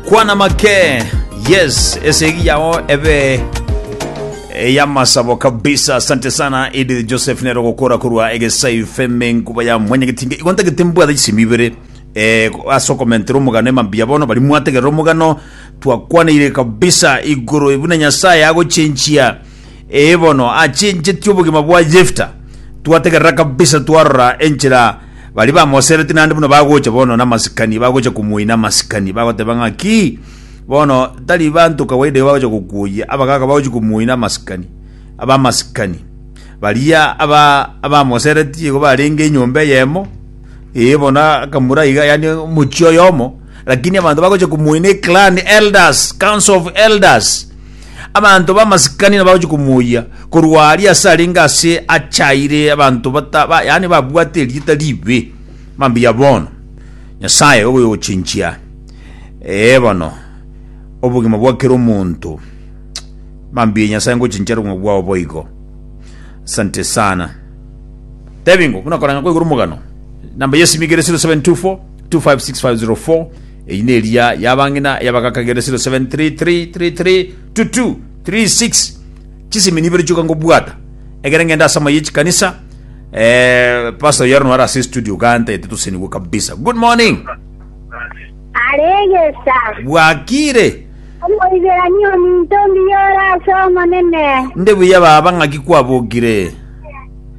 kwana make yes esegi yao ebe eyamasabo kabisa asante sana edith joseph nero gokora korwa egesai feme nkuba ya mwenyegetinge igonta getembwatha chisemi ibere eh, ase okomentera omogano emambia bono bari mwategerera omogano twakwanire kabisa igoro buna nyasaye agochenchia Ee bono achenchetie obogima bwa Yefta, twategerera kabisa twarora enchera baria bamoseretie naende buna bagocha bono namasikani bagocha komoina amasikani bagoteba ng'aki bono tari banto kawaida bagocha gokuoyia abagaga bagocha komoina amasikani abamasikani baria aba abamoseretie igo barenge enyomba eyemo ee bono akamura iga yani omochie oyomo lakini abanto bagocha komoina eclan elders council of elders Abanto b'amasikani nabagochia komoyia korwa aria ase arenge ase achaire abanto bata, ba, yani babwate erieta ribe. Mambuya bono. Nyasaye ogoyochinchia ee bono obogima bwa kera omonto. Mambuya Nyasaye ngochinchia obogima bwao boigo. Asante sana. Tebingo buna koranga kwa iguru mugano. Namba yesimi igere 0724 256504 Eyio neria y'abang'ina y'abagakagerera 0733332236 chisemi nibere chioka ngobwata egere ngende ase amaye chikanisa eh, pastor yaro nwara ase studio ganta ete tosenigwe kabisa good morning aregesa bwakire omoiberani ominto mbiyora ase omonene nde buya baba ng'aki kwabogire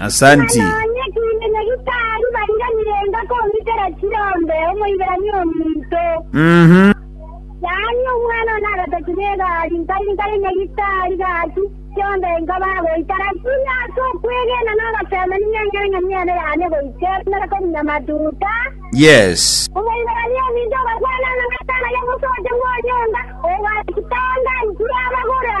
Asanti. Nonya kiinde Nyagetari bariganire enga komitera chirombe Omoiberania ominto. Mhm. Yaani omwana one agataki negari nkari nkare Nyagetari gaki chionde enga bagoita lakini ase okwegena nogasema ninya eng'eng'eni ene yane goika emere komunya matuta. Yes. Omoiberania ominto ogakwana ng'a Nyasae naye mosote bw'onyomba, ogaikitanga nkirabagora.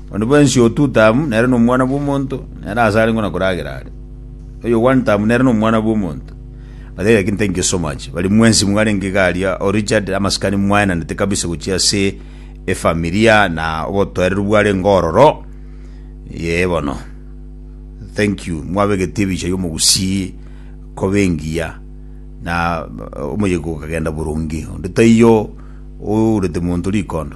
Onde bwensi otutamu nere nomwana bw'omonto, nere aase arenge ona koragera are. Oyo ogwantamu nere nomwana bw'omonto. Batebie gaki nte ngesomache. Bari mwensi mwarenge iga aria, o Richard, amasikani mwaenanete kabisa gochia ase efamilia na obotoereru bwarenge ororo. Yee bono. Thank you. Mwabegeti ebicha y'omogusii koba engiya. Na omoyega okagenda boronge. Onde taiyo ourete monto rikondo.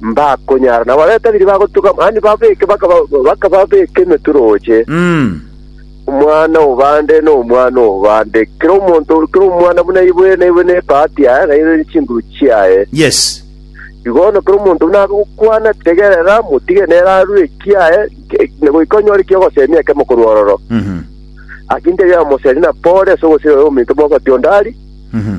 mbakonyara, na baria batabiri bagotuga, mani babeke, baka- bakababeka emetwe roche, Mm. omwana obande na omwana obande, kera omonto, kera omwana buna ibwe na ibwe nebahati yaye, na ibwe chinguru chiaye. Yes. Igo bono kera omonto buna abe gokwana, tegerera, motige nere arue ekiaye, ke- na goika onyore ekia ogosemia ekemo korwa ororo. Mhm. Akinte yamoseri na pore ase ogosira ominto mogoti ondari, Mhm.